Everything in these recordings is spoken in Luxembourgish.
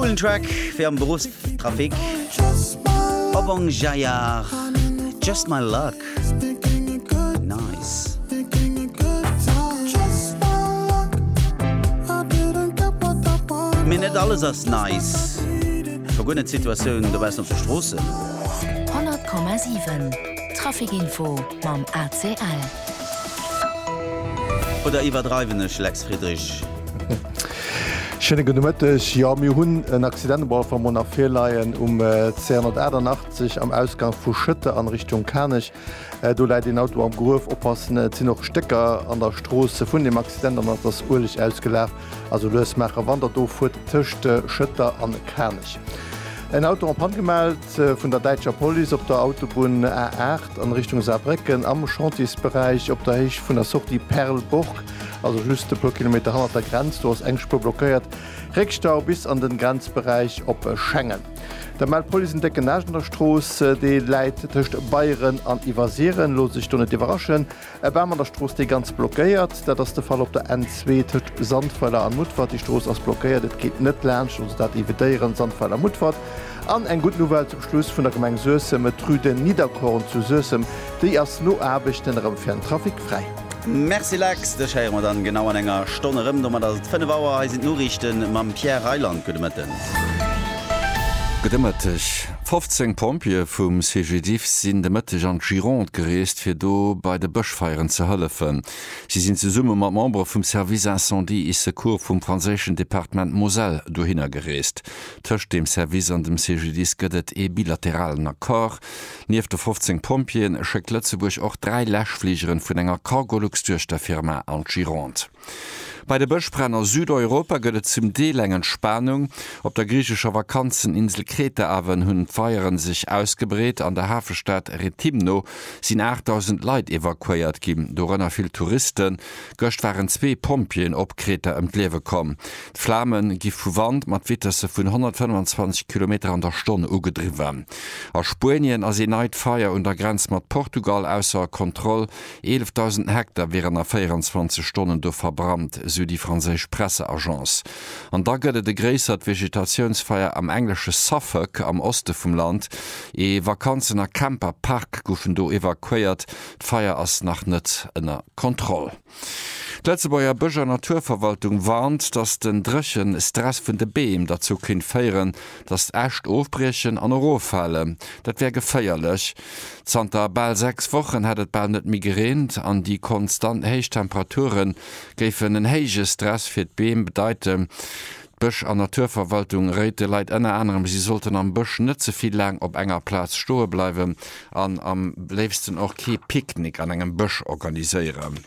Coolen Track fir am Beruffstrafic. Obong Jayar, Just My Luck. Mee net alles ass nice, scho guer net d'Situatioun dobaussen op de Stroossen. 100,7 Traficinfo mam ACL. Oder iwwerdreiwen ech, Lex Friedrich? Schéine gudde Mëtteg. Jo, mir hunn en Accident um Walfer Moor nach virleien, um C188 am Ausgank vu Schëtter an Richtung Kanech. Do läit een Auto am Gruef. Oppassen, et sinn och Stécker an der Strooss vun deem Accident an et ass Ueleg ausgelaf. Also lues maachen, wann Der do fuert tëscht Schëtter an Kanech. En Auto en panne gemellt vun der däitscher Police op der Autobunn A8 an Richtung Saarbrécken am Chantiers-Beräich op der Héicht vun der Sortie Perleburg. Also just e puer Kilometer hannert der Grenz, do ass eng Spuer blockéiert. Réckstau bis an den Grenzberäich op Schengen. Der Mell Police en décken Aascht an der Strooss, dee läit tëscht Beieren an Iwwersiren. Loosst Iech do net iwwerraschen. E Bam an der Strooss, dee ganz blockéiert. Dat ass de Fall op der N2 tëscht Sandweiler an Mutfert. Déi Strooss ass blockéiert, et geet net laanscht, also dat evitéieren, Sandweiler, Mutfert. An eng gutt Nouvelle zum Schluss vun der Gemeng Suessem, et d'Rue de Nidderkorn zu Suessem, déi ass no Aarbechten erëm fir den Trafic fräi. Merci Lex, dech héiere mer dann genau an enger Stonn erëm. Domat ass et 5 Auer, hei sinn d'Noriichten mam Pierre Reyland. Gudde Mëtten. Gudde Mëtteg. 15 Pompjeeë vum CGDIF sinn de Mëtteg an d'Gironde gereest, fir do bei de Bëschfeieren ze hëllefen. Si sinn zesumme mat Membere vum Service Incendie et Secours vum franséischen Departement Moselle dohinner gereest. Tëscht deem Service an dem CGDIS gëtt et ee bilateralen Accord. Nieft de 15 Pompjeeën schéckt Lëtzebuerg och dräi Läschfligeren vun enger Cargolux-Duechterfirma an d'Gironde. Bei de Bëschbränn a Südeuropa gëtt et zum Deel eng Entspanung. Op der griichescher Vakanzeninsel Kreta awen hunn d'Feieren sech ausgebreet. An der Hafestad Rethymno sinn 8.000 Leit evakuéiert ginn, dorënner vill Touristen. Gëscht waren zwee Pompjeeën op Kreta ëm d'Liewe komm. D'Flame gi vu Wand mat Vitesse vun 125 Kilometer an der Stonn ugedriwwen. A Spuenien ass ee neit Feier un der Grenz mat Portugal ausser Kontroll. 11.000 Hektar wieren a 24 Stonnen do verbrannt, sou déi franséisch Presseagence. An da gëtt et e gréissert Vegetatiounsfeier am englesche Suffolk, am Oste vum Land. Ee Vakanzen a Camper-Park goufen do evakuéiert. D'Feier ass nach net ënner Kontroll. D'Lëtzebuerger Bësch a Naturverwaltung warnt, datt den dréchen Stress vun de Beem derzou kéint féieren, datt Äscht ofbriechen an eroffalen. Dat wär geféierlech. Zanter bal 6 Wochen hätt et bal net méi gereent an déi konstant héich Temperature géifen en héije Stress fir d'Beem bedeiten. D'Bësch an Naturverwaltung réit de Leit ënner anerem, si sollten am Bësch net ze vill laang op enger Plaz stoe bleiwen an am léifsten och kee Picknick an engem Bësch organiséieren.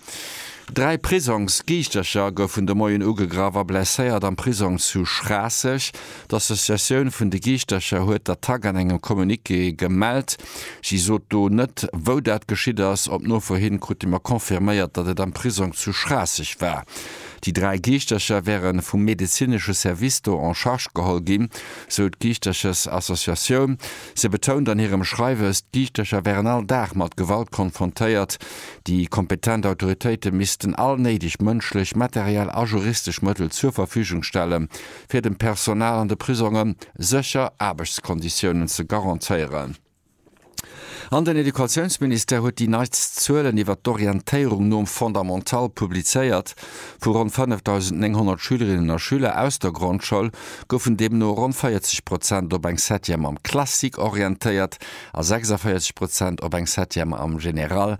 Dräi Prisongsgiichtercher goufen de Moien ugegraff a blesséiert am Prisong zu Schraasseg. D'Associatioun vun de Giichtercher huet d'Attack an engem Communiqué gemellt. Si sot do net, wou dat geschitt ass. Op Nofro hin krute mer confirméiert, datt et am Prisong zu Schraasseg war. Déi dräi Geeschtercher wäre vum medezinesche Service do en charge geholl ginn, sou d'Geeschterchesassociatioun. Se betount an hirem Schreiwes, d'Geeschtercher wären all Dag mat Gewalt konfrontéiert. Déi kompetent Autoritéite missten all néideg mënschlech, materiell a juristesch Mëttel zur Verfügung stellen, fir dem Personal an de Prisonge sécher Aarbechtskonditiounen ze garantéieren. An den Educatiounsministère huet déi neitst Zuelen iwwert d'Orientéierung nom Fondamental publizéiert. Vu ronn 5.900 Schülerinnen a Schüler aus der Grondschoul goufen deemno ronn 40 Prozent op eng Septième am Classique orientéiert a 46 Prozent op eng Septième am Général.